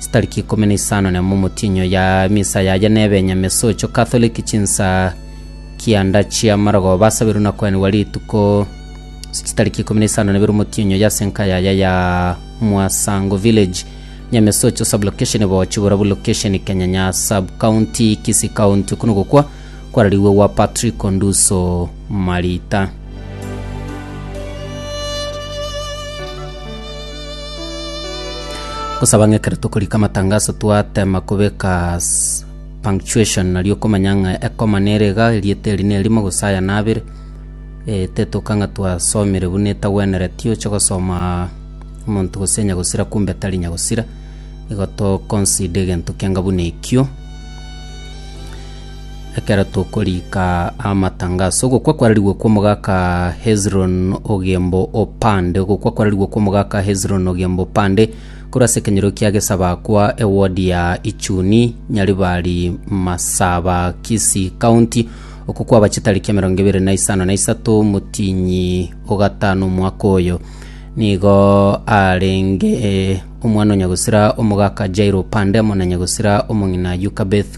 Chitariki ikomi na isano na emo omotienyi oya emisa yaye nebe enyama esocho Catholic chinsa kianda chia marogo basabirwe na kwenigwa rituko ase chitariki ikomi na isano na ibere omotienyi oya ase enka yaye ya Mwasango Village nyama esocho sub location Bochigora bu location Kenyanya sub county Kisii county okwo nogokwa kwarariwe gwa Patriko Nduso Marita. Gosaba ng'ekero tokorika amatangaso twatema kobeka s- punctuation nario okomanya ng'a ekoma nere iga erieta eri nerimo gose aya nabere eh, tetoka ng'a twasomire buna etagwenereti oche gosoma omonto gose nyagosira kumbe tari nyagosira igo to consider egento kianga buna ekio Ekero tokoriika amatanga ase ogokwa kwararigwe kw'omogaka Hezron Ogembo Opande, ogokwa kwararigwe kw'omogaka Hezron Ogembo Opande korwa ase ekenyoro kia Gesabakwa, eward ya Ichuni, Nyaribari, Masaba, Kisii County. Oko kwaba chitariki emerongo ebere na isano na isato motiinyi o gatano omwaka oyo. Nigo arenge omwana o nyagosira omogaka Jairo Opande amo na nyagosira omong'ina Yukabeth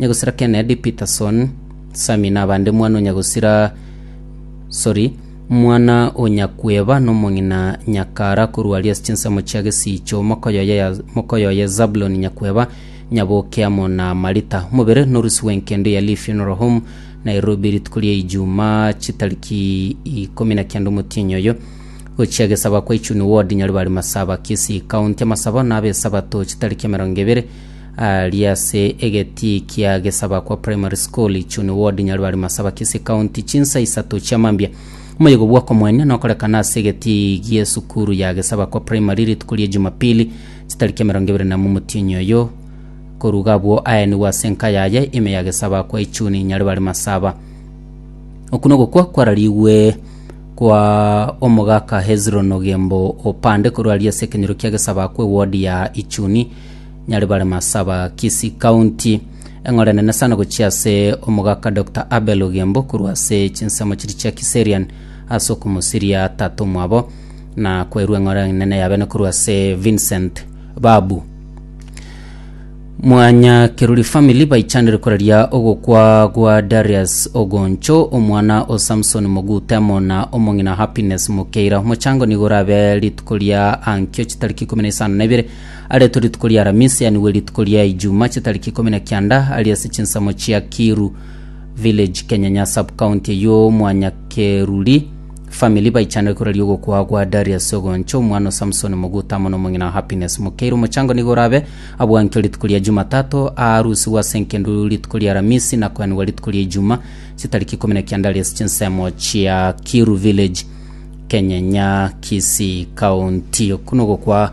Nyagusira Kennedy Peterson, Sammy na abande mwana o Nyagusira sorry, mwana o Nyakweba na omong'ina Nyakara korwa Alias chinsemo chia gesiicho mokoyoye ya mokoyoye Zabulon Nyakweba nyaboke amo na Marita. Omobere norusi bw'enkende ya Lee Funeral Home Nairobi rituko ria Ijumaa chitariki ikomi na kenda omotienyi oyo gochia gesaba kwa Ichuni Ward Nyaribari Masaba Kisii County. Amasabo nabe Esabato chitariki emerongo ebere Aaria ase egetii kia Gesabakwa Primary School, Ichuni Ward, Nyaribari Masaba, Kisii County, chinsa isato chia mambia. Omoyego bw'okomoenia nokorekana ase egetii gie sukuru ya Gesabakwa Primary rituko rie Jumapili chitariki emerongo ebere namo omotienyi oyo. Koruga abwo aenigwe ase enka yaye ime ya Gesabakwa Ichuni, Nyaribari Masaba. Oku nogokwa kwararigwe kwa omogaka Hezron Ogembo Opande korwa aria ase ekenyoro kia Gesabakwa eward ya Ichuni. Nyari bare Masaba, Kisii County. Eng'ora enene sana gochia ase omogaka Dr. Abel Ogembo korwa ase chinsemo chiria chia Kiserian ase okomosiria tata omwabo na kwerwa eng'ora enene yabene korwa ase Vincent Babu. Mwanya Keruri Family baichanire koraria ogokwa gwa Darius Ogoncho, omwana o Samson Mogutemo na omong'ina Happiness Mokeira. Omochango nigo orabe rituko ria ankio chitariki ikomi na isano na ibere Aretwe rituko ria Aramisi, yaani bwe rituko ria Ijuma, chitariki ikomi na kianda, ari ase chinsemo chia Kiiru Village, Kenyanya Sub-county eyio Mwanyakeruri. Family baichanire koraria ogokwa aa gwa Darius Ogoncho, omwana o Samson Moguta amo nomong'ina Happiness Mukeire. Omochango nigo orabe abwankio rituko ria Jumatato, aarusigwe ase enkendu rituko ria Aramisi na koenigwa rituko ria Ijuma, chitariki ikomi na kianda ari ase chinsemo chia Kiiru Village, Kenyanya, Kisii County. Oku nogokwa